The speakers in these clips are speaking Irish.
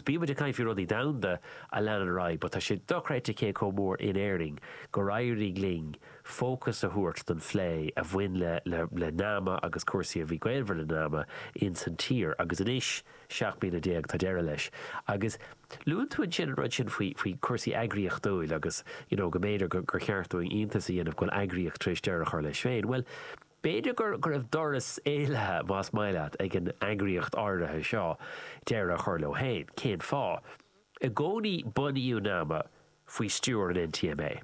Bíonn muid ag caint faoi rudaí domhanda a leanann ar aghaidh, but tá sé dochreidte cé chomh mór in Éirinn gur éirigh linn fócas a thabhairt don phlé a bhain le nama agus cúrsaí a bhí gaolmhar le nama ins an tír agus anois, 17 bliana, tá deireadh leis. Agus luann tú ansin an rud sin faoi cúrsaí eagraíochtúil agus you know go mb'fhéidir gur cheart dúinn iontas a dhéanamh go bhfuil eagraíocht tar éis deireadh a chur leis féin. Bhuel. B'fhéidir go raibh doras éalaithe, más maith leat, ag an eagraíocht áirithe seo deireadh a chur leo féin. Cén fáth? I gcónaí bunaíodh nama faoi stiúir an NTMA.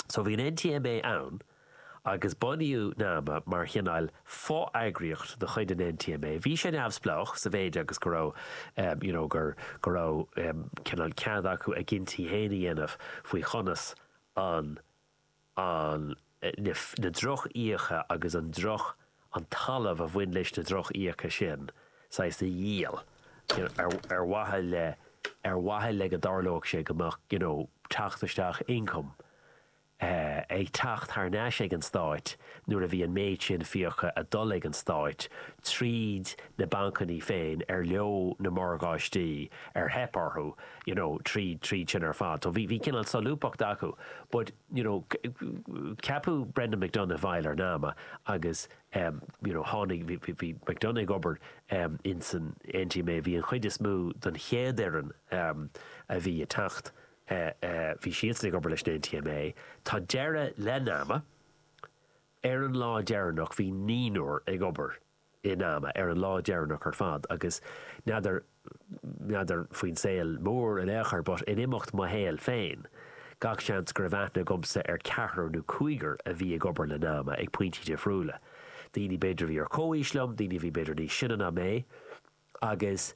So bhí an NTMA ann agus bunaíodh nama mar chineál fo-eagraíocht de chuid an NTMA. Bhí sé neamhspleách sa mhéid agus go raibh, you know, gur, go raibh cineál cead acu a gcinntí féin a dhéanamh faoi chonas an, an, na, na drochfhiacha agus an droch, an talamh a bhain leis na drochfhiacha sin, saghas a dhíol, you know, ar, ar mhaithe le, ar mhaithe le go dtarlódh sé go mbeadh, you know, teacht isteach, income, eh, ag teacht thar n-ais ag an Stát nuair a bhí an méid sin fiacha ag dul ag an Stát tríd na bancanna féin ar leo na morgáistí ar theip orthu, you know, tríd, tríd sin ar fad. So bhí, bhí cineál solúbthacht acu. But, you know, ceapadh Brendan McDonagh i bhfeighil ar nama agus, you know, tháinig, bhí, bhí, bhí McDonagh ag obair in san NTMA, bhí an chuid is mó den chéad fhoireann a bhí ag teacht, bhí siadsan ag obair leis an NTMA. Tá deireadh le nama, ar an lá deireanach bhí naonúr ag obair i nama, ar an lá deireanach ar fad, agus n'fheadar, n'fheadar faoin saol mór in aon chor, but in imeacht mo shaoil féin, gach seans go raibh aithne agamsa ar ceathrar nó cúigear a bhí ag obair le nama, ag pointí difriúla. Daoine b'fhéidir a bhí ar chomhaois liom, daoine a bhí b'fhéidir níos sine ná mé, agus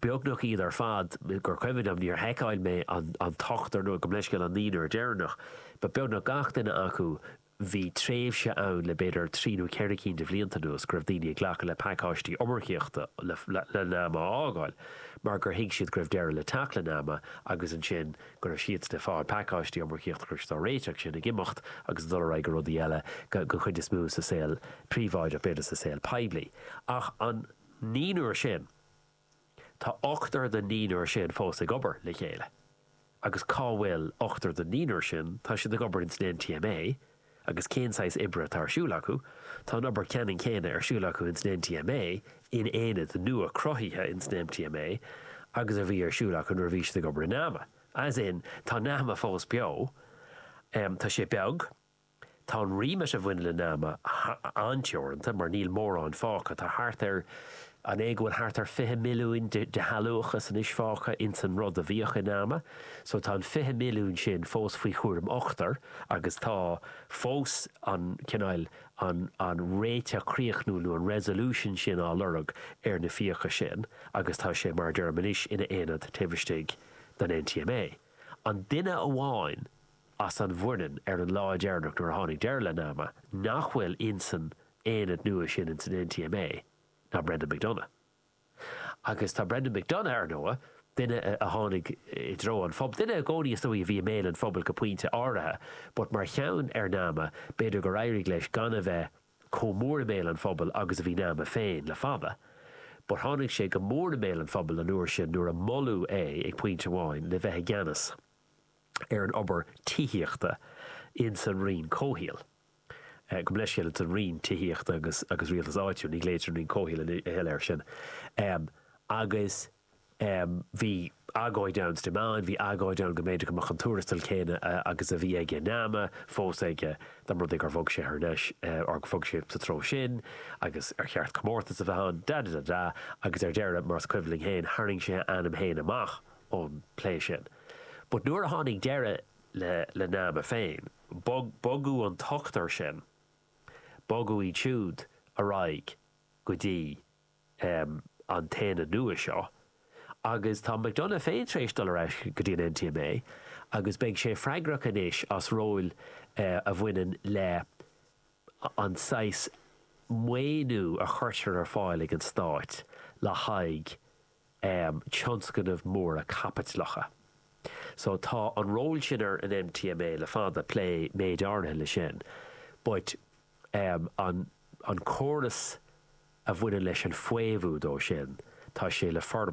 beagnach iad ar fad, gur cuimhin liom, níor sheiceáil mé an t-ochtar nó gabh mo leithscéal an naonúr deireanach, but beagnach gach duine acu, bhí tréimhse ann le b'fhéidir trí nó ceithre cinn de bhlianta anuas go raibh daoine ag glacadh le pacáistí iomarcaíochta le nama a fhágáil mar gur thuig siad go raibh deireadh le teacht le nama agus ansin go raibh siad ag fáil pacáistí iomarcaíochta go raibh siad ag réiteach chun imeacht agus ag dul ar aghaidh go rudaí eile, den chuid is mó sa saol príobháideach b'fhéidir sa saol poiblí ach an. naonúr sin, tá ochtar den naonúr sin fós ag obair le chéile. Agus cá bhfuil ochtar den naonúr sin? Tá siad ag obair ins an NTMA. Agus cén saghas oibre atá ar siúl acu? Tá an obair ceannann céanna ar siúl acu ins an NTMA, in aonad nua cruthaithe ins an NTMA, agus a bhí ar siúl acu nuair a bhí siad ag obair i NAMA. As in, tá NAMA fós beo. Tá sé beag. Tá an remit a bhaineann le nama an-teoranta mar níl mórán fágtha. Tá thart ar, an é go bhfuil thart ar 20 milliúin de shealúchas anois fágtha ins an rud a bhíodh i nama. So tá an 20 milliúin sin fós faoi chúram ochtair agus tá fós an cineál, an, an réiteach críochnúil nó an resolution sin á lorg ar na fiacha sin agus tá sé, mar a deirim anois, ina aonad taobh istigh den NTMA. An duine amháin. as an bhfoireann ar an lá deireanach nuair a tháinig deireadh le Nama, nach bhfuil insan aonad nua sin insan NTMA ná Brendan McDonagh. Agus tá Brendan McDonagh, ar ndóigh, duine a tháinig i dtreo an phobail, duine i gcónaí is dóigh a bhí i mbéal an phobail go pointe áirithe, but mar gheall ar Nama, b'fhéidir gur éirigh leis gan a bheith chomh mór i mbéal an phobail agus a bhí Nama féin le fada. But tháinig sé go mór i mbéal an phobail an uair sin nuair a moladh é, ag pointe amháin, le bheith i gceannas. ar an obair tithíochta ins an Roinn Comhshaoil, gabh mo leithscéal ins an Roinn Tithíochta agus Rialtais Áitiúil, ní ghlaoitear an Roinn Comhshaoil a thuilleadh air sin, agus bhí agóid ann is cuimhin liom, bhí agóid ann go mb'fhéidir go mbeadh an tuarastal céanna agus a bhí aige i Nama fós aige dá mba rud é gur bhog sé thar n-ais, or gur bhog sé sa treo sin agus ar cheart comórtas a bheith ann, da-da-da-da, agus ar deireadh, mar is cuimhin linn féin, tharraing sé a ainm féin amach. ón bplé sin. But nuair a tháinig deireadh le le nama féin, bog bogadh an t-ochtar sin, bogadh iad siúd ar aghaidh go dtí em an tAonad nua seo agus tá McDonagh féin tar éis dul ar ais go dtí an NTMA agus beidh sé freagrach anois as ról eh a bhaineann le an saghas maoiniú a chuirtear ar fáil ag an Stát le haghaidh um tionscnamh móra caipitleacha. So tá an ról sin ar an NTMA le fada, plé méid áirithe leis sin, but um an an córas a bhaineann leis an bhfaomhadh dó sin, tá sé le for.